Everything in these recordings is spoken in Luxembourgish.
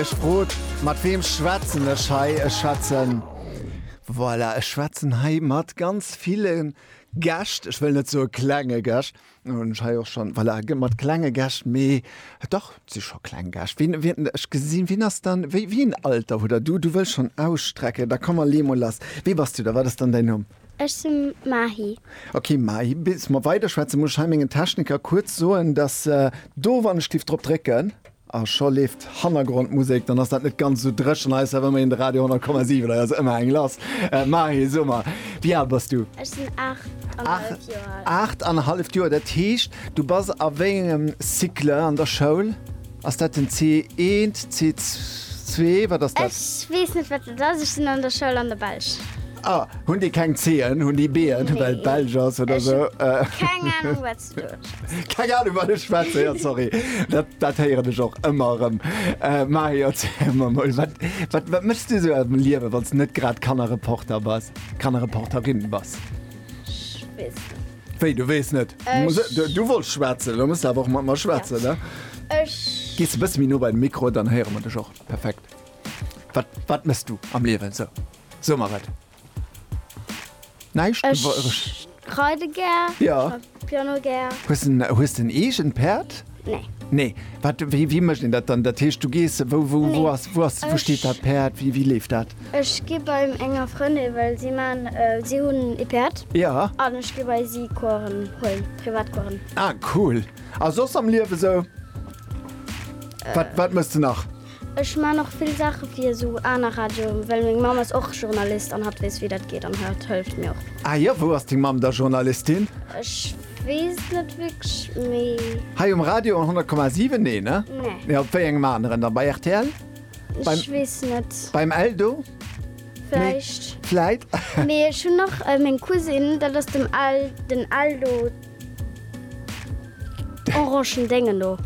Ech frot, mat weem schwätzen ech hei? Ech schwätzen, voilà, ech schwätzen hei mat ganz ville Gäscht. Ech wëll net soe klenge Gäscht, dat hunn ech hei och schonn, voilà, mat klenge Gäscht, mee dach, et si scho kleng Gäscht. Wien, wien, ech gesinn, wien ass dann, wéi, wéi een Alter hutt Der? Du, du wëlls schonn ausstrecken, da komm, lee mol lass. Wee bass du da? Wat ass dann däin Numm? Ech si Mahi. Ok Mahi, bis mer weiderschwätzen, muss ech hei mengen Techniker kuerz soen, dass do, wann ech giff drop drécken, A scho leeft Hannergrondmusek, dann ass dat net ganz esou dréchen. Hei ass awer ëmmerhin de Radio 10,7, hei ass ëmmer eng lass. Mahi, so mar, wéi al bass du? Ech sinn aacht an e halleft Joer al. Aacht an e halleft Joer, dat heescht, du bass a wéi engem Cycle an der Schoul? Ass dat den C1, C2, wat ass dat? Ech weess net, wat dat ass. Ech sinn an der Schoul an der Belsch. Ah, hunn déi keng C'en? Hunn déi B'en, well et belsch ass oder esou? Ech hunn keng Anung, wat. Keng Ahnung wat ech schwätzen, ja sorry. Dat, dat héieren ech och ëmmer erëm. Äh, Mahi, erzähl mer mol, wat, wat, wat méchs du sou am Liewe, wann s du net grad Kannerreporter bass, Kannerreporterin bass? Ech weess net. Wéi, du weess net? Äh, Muss, ech- du, du wollts schwätzen, da muss du awer och mat mer schwätzen, ne? Ech Gees e bësse méi no bei de Mikro, dann héiere mer dech och. Perfekt. Wat, wat méchs du am Liewe, sou? So mach et. Näischt Besonnesches. Ech reide gär. Ja. Ech schaffe Piano gär. Hues de en eegent Päerd? Nee. Nee. Wat, wéi, wéi mécht een dat dann? Dat heescht, du gees, wou, wou, wou ass, wou ass, wou steet dat Päerd? Wéi, wéi leeft dat? Ech gi bei enger Frëndin, well si man, si hunn e Päerd. Ja. An ech gi bei si Coursen huelen, Privatcoursen. Ah, cool. A soss am Liewe sou? Wat, wat méchs de nach? Ech maan och vill Saachen fir sou aaner Radioen, well meng Mamm ass och Journalist an hat wees wéi dat geet an hat hëlft mir och. Ah jo, wou ass deng Mamm da Journalistin? Ech wees net wierklech mee. Hei um Radio 100,7? Nee ne? Nee. Op wéi engem aneren dann? Bei rtl? Ech wees net. Beim Eldo? Vläicht. Vläit. Mee ech hun och meng Cousine, dat ass dem den Eldo. Orangen dengen no.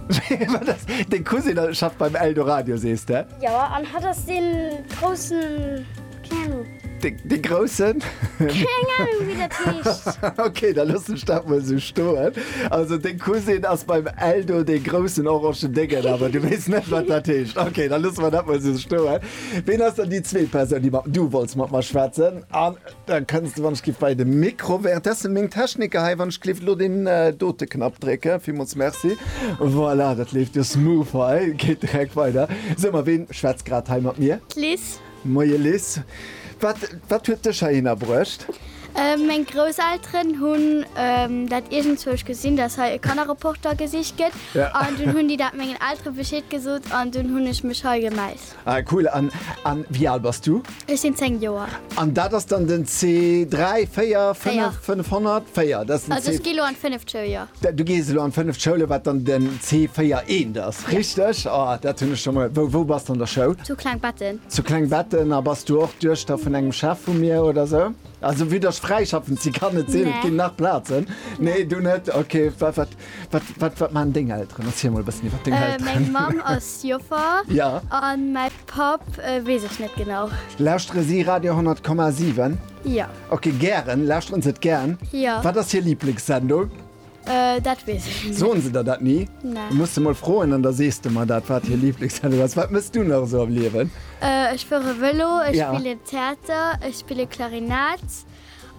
Deng Cousine schafft beim Eldoradio sees de? Jo, an hatt ass dee groussen, keng Anung. Dee groussen? Keng Anung wéi dat heescht. Ok, da loossen ech dat mol esou stoen. Also deng Cousine ass beim Eldo dee groussen Orangen dengen, awer du weess net wat dat heescht. Ok, da loosse mer dat mol esou stoen. Ween ass dann déi zweet Persoun déi mat, du wollts mat mer schwätzen an. Da kënns de wann ech giff bei de Mikro währenddessen meng Techniker hei wann ech gliff lo deen dote Knapp drécken. Villmools Merci. Voilà, dat leeft jo smooth hei. Geet direkt weider. Sou ma ween schwätzt grad hei mat mir? D'Liz. Moie Liz. Wat wat huet dech heihinner bruecht? Meng Grousselteren hunn dat iergendzwousch gesinn, dass hei e Kannerreporter gesicht gëtt. An dunn hunn déi dat mengen Eltere Bescheed gesot an dunn hunn ech mech hei gemellt. Ah cool, an an wéi al bass du? Ech sinn 10 Joer. An dat ass dann den C 3, 4, 5, 500? 4, dat ass den C. Also ech gi lo an d'fënneft Schoul, jo. Du gees elo an d'fënneft Schoul, wat dann den C 4, 1 ass, richteg? Oh, dat hunn ech scho mol. Wou wou bass de an der Schoul? Zu Klengbetten. Zu Klengbetten. A bass du och d'Duechter vun engem Chef vu mir oder sou? Also wéi datt ech fräischaffend si kann et sinn, et ginn nach Plazen. Nee, du net? Ok, wat wat Wat man deng Elteren erzähl mol bessen iwwer deng Elteren. Meng Mamm ass Joffer. Ja. An mäi Papp weess ech net genau. Lauschtere si Radio 10,7? Ja. Ok, gären, lauschteren se et gären? Ja. Wat ass hir Liblingssendung? Dat weess ech net. Soen se der dat ni? Nee. Du muss se mol froen an da sees de mer dat wat hir Liblingssendung ass. Wat mëss du nach esou am Liewen? Ech fuere Vëlo, ech spillen Theater, ech spille Klarinett.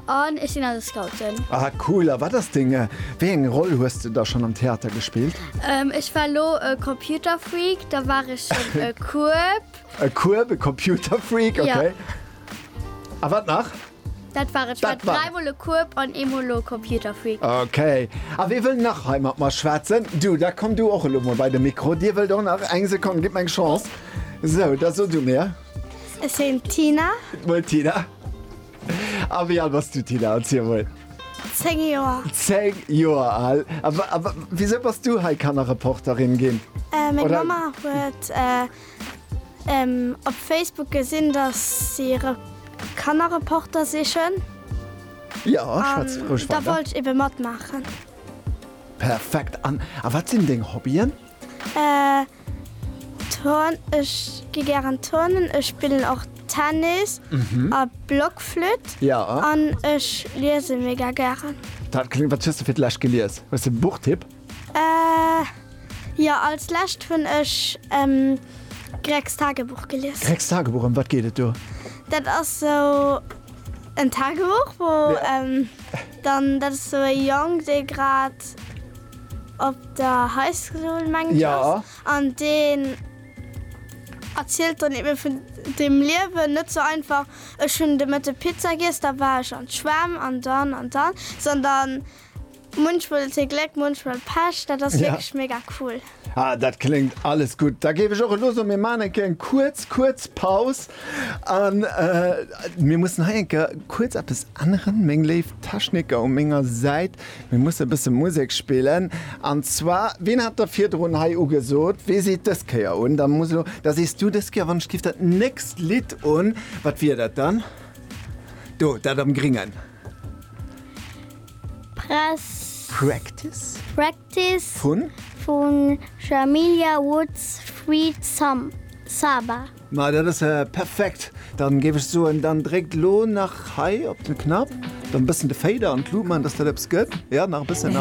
An ech sinn an de Scouten. Ah cool, a wat ass deng, wéi eng Roll hues de da schonn am Theater gespillt? Ech war elo e Computerfreak, da war ech schonn e Kueb. E Kueb, e Computerfreak, okay. Jo. A wat nach? Dat war et. Ech war dräi mol e Kueb an ee mol elo e Computerfreak. Okay. A wie wëll nach hei mat mer schwätzen? Du, da komm du och elo mol bei de Mikro. Dir wëllt och nach? Eng Sekonn, gitt mer eng Chance. Sou, da so du mir. Ech sinn d'Tina. Gutt mol Tina. A wéi al bass du, Tina? Erziel emol. Zéng Joer. Zéng Joer al. A wisou bass du hei Kannerreporterin ginn? Meng Mamma huet op Facebook gesinn, datt si e Kannerreporter sichen. Jo, schwätz roueg weider. Da wollt ech ebe matmaachen. Perfekt. An wat sinn deng Hobbyen? Turn, ech gi gären turnen, ech spillen och Tennis a Blockflütt. Ja. An ech liese mega gären. Dat kléngt. Wat hues de fir d'lescht gelies? Hues de e Buchtipp? Jo, als lescht hunn ech Gregs Tagebuch gelies. Gregs Tagebuch, ëm wat geet et do? Dat ass sou en Tagebuch wou. Dann dat ass sou e Jong dee grad op der High School mengen ech ass. Jo. An deen erzielt dann eben vun dem Liewen, net sou einfach, ech hunn de Mëtte Pizza giess, da war ech an d'Schwämm an dann an dann, sondern munchmol huet hie Gléck, munchmol Pech. Dat ass wierklech mega cool. Ah, dat kléngt alles gutt. Da géif ech och elo soen, mir maachen eng Kéier eng kuerz, kuerz Paus an mir mussen hei eng Kéier kuerz eppes änneren, meng léif Techniker u menger Säit. Mir musse e bësse Musek spillen an zwar, wien hat da virdrun hei ugesot, wee seet dës Kéier un? Da muss elo, da sees du dës Kéier, wann ech giff dat nächst Lidd un. Wat wier dat dann? Do, dat am Gringen. Press. Practice? Prac. Gratis. Vun? Vun Jamilia Woods Sweet Sam Saba. Ma dat ass ja perfekt! Dann géif ech soen, dann dréckt lo nach hei op den Knapp, dann bëssen de Fader an d'Luut man, dass dat eppes gëtt. Jo, nach e bëssen.